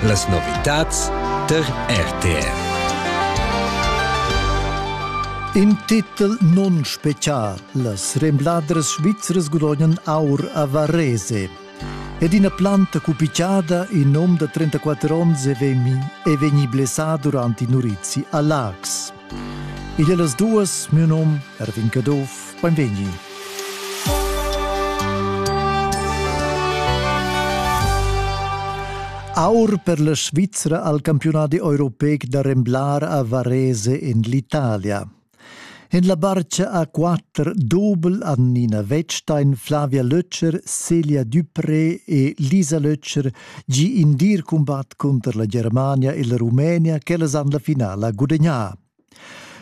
Las novitads tar RTR. In titel non special. Las rembladras svizras gudognan aur a Varese. Ed ina planta cupichada in nom da 34 onns è vegni blessà durante i Nurizzi a Lax. Igl las duas, miu num Erwin Caduff, beinvegni. Aur per la Svizzera al campionati europeic da remblar a Varese in l'Italia. In la barcia a quatter dobel Annina Wettstein, Flavia Lötscher, Celia Dupré e Lisa Lötscher gi in dir cumbat cunter la Germania e la Rumenia ch'ellas han la finala gudagnà.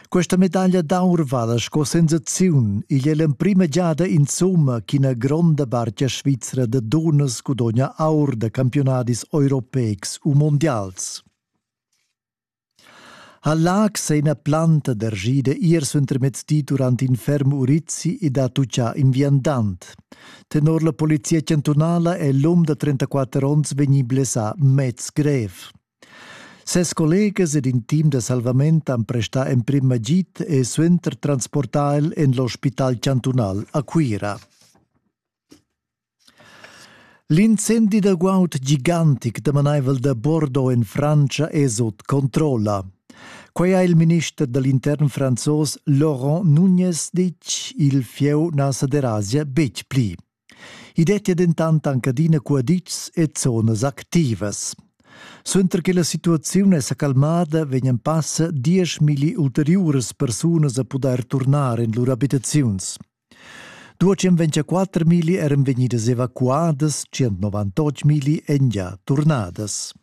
Questa medaglia d'aur vala sco sensaziun. Igl è l'emprima giada insomma ch'ina gronda barca svizra da dunnas gudogna aur da campiunadis europeics u mondials. Ha Laax è ina planta d'argida ir suentermezdi durant in ferm urizi ed ha tutgà in viandant. Tenor la polizia chantunala è l'um da 34 onns vegnì blessà mez grev. Ses collegas ed in team da salvament han prestà emprim agid e suenter transportà el en l'ospital chantunal a Cuira. L'incendi da guaud gigantic damanaivel da Bordeaux en Frantscha è sut controlla. Quai ha il minister da l'intern franzos Laurent Nunez ditg. Il fieu na sa derasia betg pli. I dettia dentant anc adina cuaditschs e zonas activas. Suenter che la situaziun è sa calmada, vegnan passa dieschmilli ulteriuras persunas a pudair turnar en lur abitaziuns. Duocem 24.000 eran vegnidas evacuadas, 198.000 èn gia turnadas.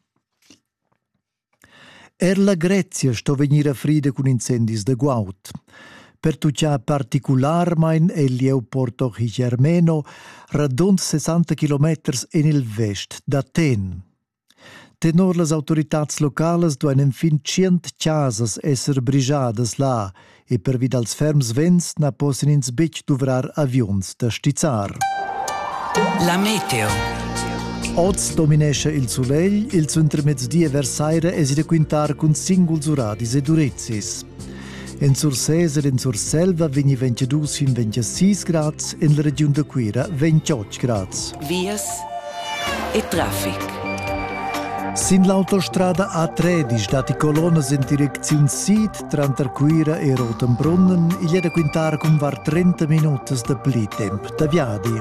Er la Grezia sto vegnir frida cun incendis da guaud. Pertuccià particularmain è il Leopoldo Gigermeno, radund 60 km en il vest d'Aten. Tenor las autoritads localas duain enfin tschient chasas esser brigiadas là e pervi dals ferms vents na possan ins betg duvrar aviuns da stizzar. La meteo. Oz dominescha il sulegl, il suentermezdi e vers saira èsi da quintar cun singuls uradis ed urezis. En Sursés ed en Surselva vegni 22 fin 26 grads, en la regiun da Cuira 28 grads. Vias e traffic. Sin l'autostrada A13 datti colonnas en direcziun sid tranter Cuira e Rotenbrunnen. Igl è da quintar cun var 30 minutas da pli temp da viadi.